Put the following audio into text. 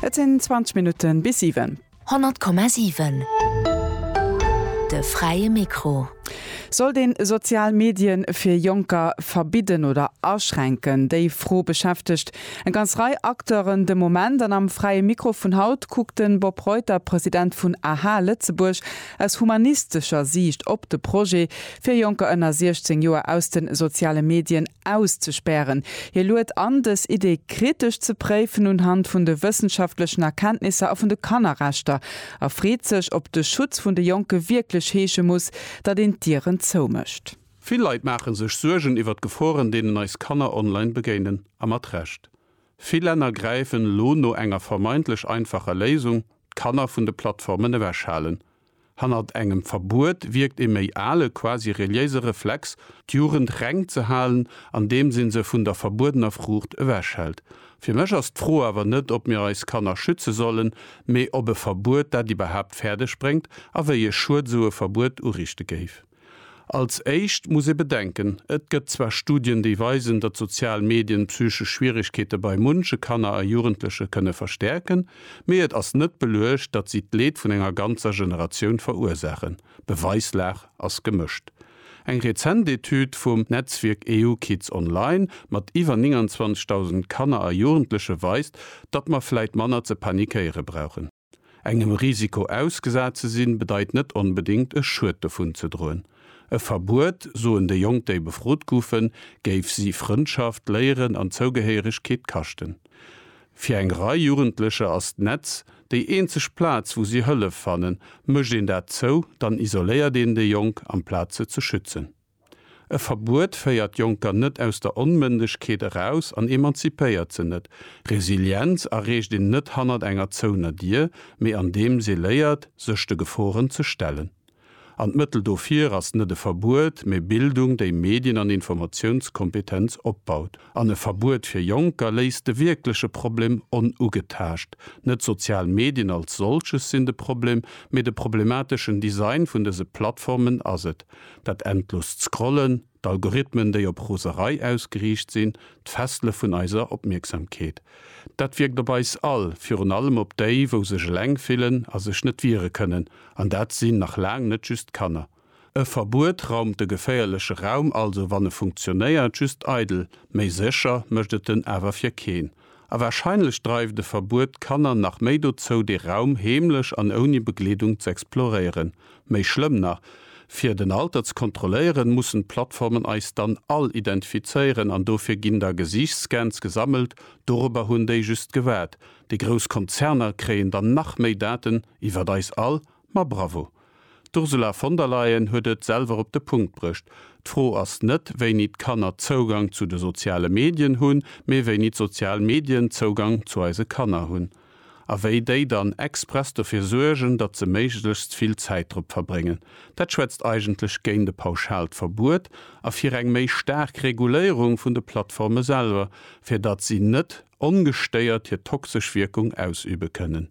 Et sinn 20 Minutten bis 7. 100,7 De fräie Mikro. Sollt een sozial Medien fir Jonker verbidden oder aschränken? Déi Fro beschäftegt eng ganz Rei Acteuren de Moment. An am fräie Mikro vun haut kuckt de Bob Reuter, President vun aha Lëtzebuerg, Aus humanistescher Siicht op de Projet, fir Jonker ënner 16 Joer aus de soziale Medien auszespären. Hie luet an, dës Idee kritesch ze préifen unhand vun de wëssenschaftlechen Erkenntnisser a vun de Kannerrechter a freet sech, ob de Schutz vun de Jonke wierklech heesche muss, datt een d'Dieren zoumécht. Vill Leit maache sech Suergen iwwer d'Geforen, deenen eis Kanner online begéinen, a mat Recht. Vill Länner gräifen elo no enger vermeintlech einfacher Léisung, d'Kanner vun de Plattformen ewechhalen. Hannert engem Verbuet wierkt ee méi ale, quasi reliéise Reflex, d'Jugend reng ze halen, andeem se se vun der verbuedener Fruucht ewechhält. Fir mech ass d'Fro awer net, ob mir eis Kanner schütze sollen, mee ob e Verbuet dat iwwerhaapt fäerdeg bréngt a wéi e Schued esou e Verbuet uriichte géif. Als éischt muss ee bedenken, Et gëtt zwar Studien, déi weisen, datt sozial Medien psychesch Schwieregkeete bei munche Kanner a Jugendleche kënne verstäerken, mee et ass net beluecht, datt si d'Leed vun enger ganzer Generatioun verursaachen. D'Beweislag ass gemëscht. Eng rezent Etüd vum Netzwierk EU Kids Online mat iwwer 29.000 Kanner a Jugendleche weist, datt mer vläit manner ze panikéiere brauchen. Engem Risiko ausgesat ze sinn, bedeit net onbedéngt e Schued dovun ze droen. E Verbuet, soen déi Jonk, déi befrot goufen, géif si Frëndschaft, Léieren an Zougehéieregkeet kaschten. Fir eng Rei Jugendlecher ass d'Netz déi eenzeg Plaz, wou si Hëllef fannen. Mécht een dat zou, dann isoléiert een déi Jonk, amplaz se ze schützen. E Verbuet féiert Jonker net aus der Onmëndegkeet eraus an emanzipéiert se net. Resilienz erreecht een net hannert enger zouener Dier, mee andeems ee léiert, sech de Geforen ze stellen. An d'Mëttel dofir ass net e Verbuet, mee Bildung, déi Medien an Informatiounskompetenz opbaut. An e Verbuet fir Jonker léist de wierkleche Problem onugetaascht. Net d'sozial Medien als solches sinn de Problem, mee de problemateschen Design vun dëse Plattformen ass et. Dat endlost Scrollen, d'Algorithmen, déi op Roserei ausgeriicht sinn, d'Fessele vun eiser Opmierksamkeet. Dat wierkt op eis all, virun allem op déi, wou sech eleng fillen a sech net wiere kënnen. An dat sinn nach laang net just d'Kanner. E Verbuet raumt de geféierleche Raum also, wann e funktionéiert, just eidel. Méi sécher mécht et en awer fir keen. A warscheinlech dreift e Verbuet d'Kanner nach méi dozou, dee Raum heemlech an ouni Begleedung z'exploréieren. Méi schlëmm nach, Fir den Alter ze kontrolléieren, mussen d'Plattformen eis dann all identifizéieren an dofir ginn da Gesiichtsscans gesammelt. Dorobber hunn déi just gewaart. Déi grouss Konzerner kréien dann nach méi Daten iwwert eis all. Ma bravo! D'Ursula von der Leyen huet et selwer op de Punkt brécht, D'Fro ass net, wéini d'Kanner Zougang zu de soziale Medien hunn, mee wéini d'sozial Medien Zougang zu eise Kanner hunn. A wéi déi dann express dofir suergen, datt se méiglechst vill Zäit drop verbréngen. Dat schwätzt eigentlech géint e pauschaalt Verbuet a fir eng méi staark Reguléierung vun de Plattforme selwer, fir datt si net ongestéiert hir toxesch Wierkung ausübe kënnen.